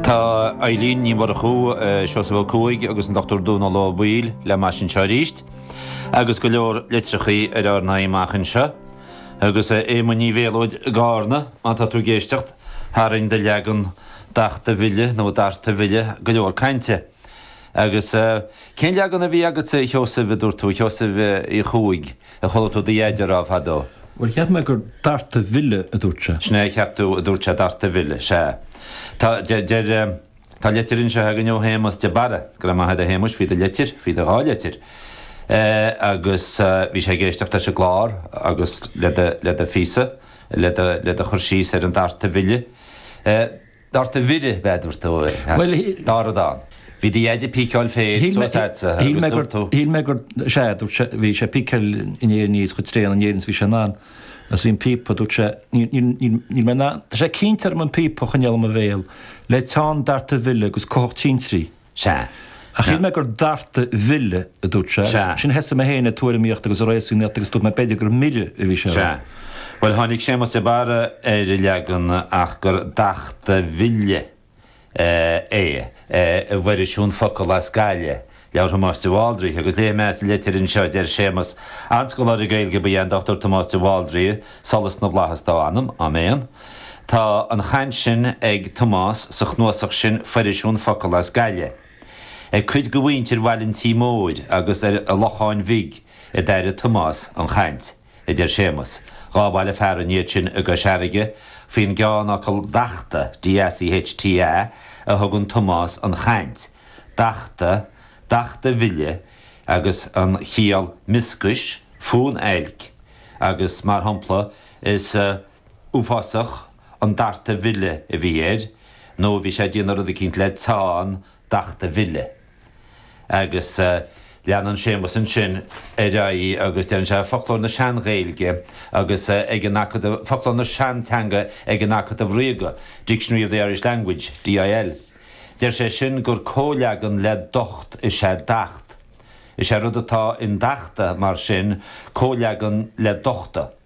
Tá Eilín Ní Mhurchú, Seosamh Ó Cuaig agus an Dr. Dónal Ó Baoill le m'ais anseo arís agus go leor litreachaí ar ár n-aghaidh amach anseo. Agus a Éamoinn Uí Mhéalóid, i gCarna, má tá tú ag éisteacht, tharraing do leagan dachta mhille, nó darta mhille, go leor cainte. Agus cén leagan a bhí agatsa a Sheosaimh, a dúirt tú, Sheosaimh Uí Chuaig? Ar chuala tú do dheaide a rá fadó. Bhuel, cheap mé gur darta mhille a dúirt sé. Sin é a cheap tú a dúirt sé, darta mhille, sea. Tá, deir, deir, tá leitir anseo againne ó Shéamas de Barra, go raibh maith agat a Shéamais, faoi do leitir, faoi do dhá leitir. Eh, agus eh, bhí sé ag éisteacht leis an gclár agus le do, le do phíosa, le do, le do chur síos ar an darta mhille. Eh. Darta mhire, ba é a dúirt tú é, ha? Bhuel, shí-. Dara dán. Bhí do Dhaidí ag píceáil féir Shíl mé. suas a'dsa, ha? Shíl mé Agus gur. dúirt tú. Shíl mé gur. Sea, dúirt sé, bhí sé ag píceáil an fhéir aníos chomh tréan in Éirinn is bhí sé in ann. Agus bhí an píopa, dúirt sé, níl, níl, níl, níl mé in ann. Tá sé cinnte orm an píopa a choinneáil i mo bhéal, le teann darta mhille agus cuthach tintrí. Sea. Ach shíl mé gur darta mhille a dúirt sé agus ansin thosaigh mé féin ag tuairimíocht agus ag réasúnaíocht agus dúirt mé b'fhéidir gur mire a bhí sé a rá. Sea. Bhuel tháinig Séamas de Barra ar an leagan ach gur dachta mhille é i bhFoirisiún Focal as Gaillimh, leabhar Thomáis de Bhaldraithe, agus léifidh mé as an litir anseo a deir Séamas, An-scoláire Gaeilge ba ea an Dr Tomás de Bhaldraithe, solas na bhFlaitheas dá anam. Áiméan. Tá an chaint sin ag Tomás sa chnuasach sin Foirisiún Focal as Gaillimh. Ag cuid de mhuintir Bhaile an Tí Mhóir agus ar an Locháin Bhig a d'airigh Tomás an chaint, a deir Séamas. Dhá bhaile fearainn iad sin i gCois Fharraige faoin gceannfhocal 'Dachta', DACHTA, a thugann Tomás an chaint, 'Dachta', 'Dachta Mhille' agus an chiall 'mioscais, fonn oilc' agus, mar shampla, is. uafásach an darta mhille a bhí air nó bhí sé ag déanamh rud eicínt le teann dachta mhille. Agus leanann Séamas ansin ar aghaidh agus deireann sé, Foclóir na Sean-Ghaeilge agus ag an Acadamh, Foclóir na Seanteanga ag an Acadamh Ríoga, Dictionary of the Irish Language, DIL. Deir sé sin gur comhleagan le docht is ea dacht. Is é rud atá in dachta, mar sin, comhleagan le dochta.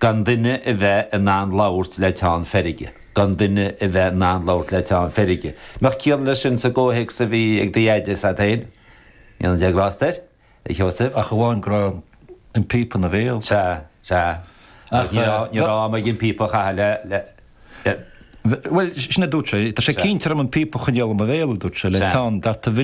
Gan duine a bheith in ann labhairt le teann feirge. Gan duine a bheith in ann labhairt le teann feirge. mbeadh ciall leis sin sa gcomhthéacs a bhí ag do dheaide is a'd féin. Níl an dea ghrásta air, a Sheosaimh. Ach amháin go raibh an píopa ina bhéal. Sea, sea. Ach ní raibh, ní raibh am aige an píopa a chaitheamh le, le, le. Bhuel, sin a dúirt sé. Tá sé cinnte orm an píopa a choinneáil i mo bhéal, a dúirt sé, le teann, darta mhille.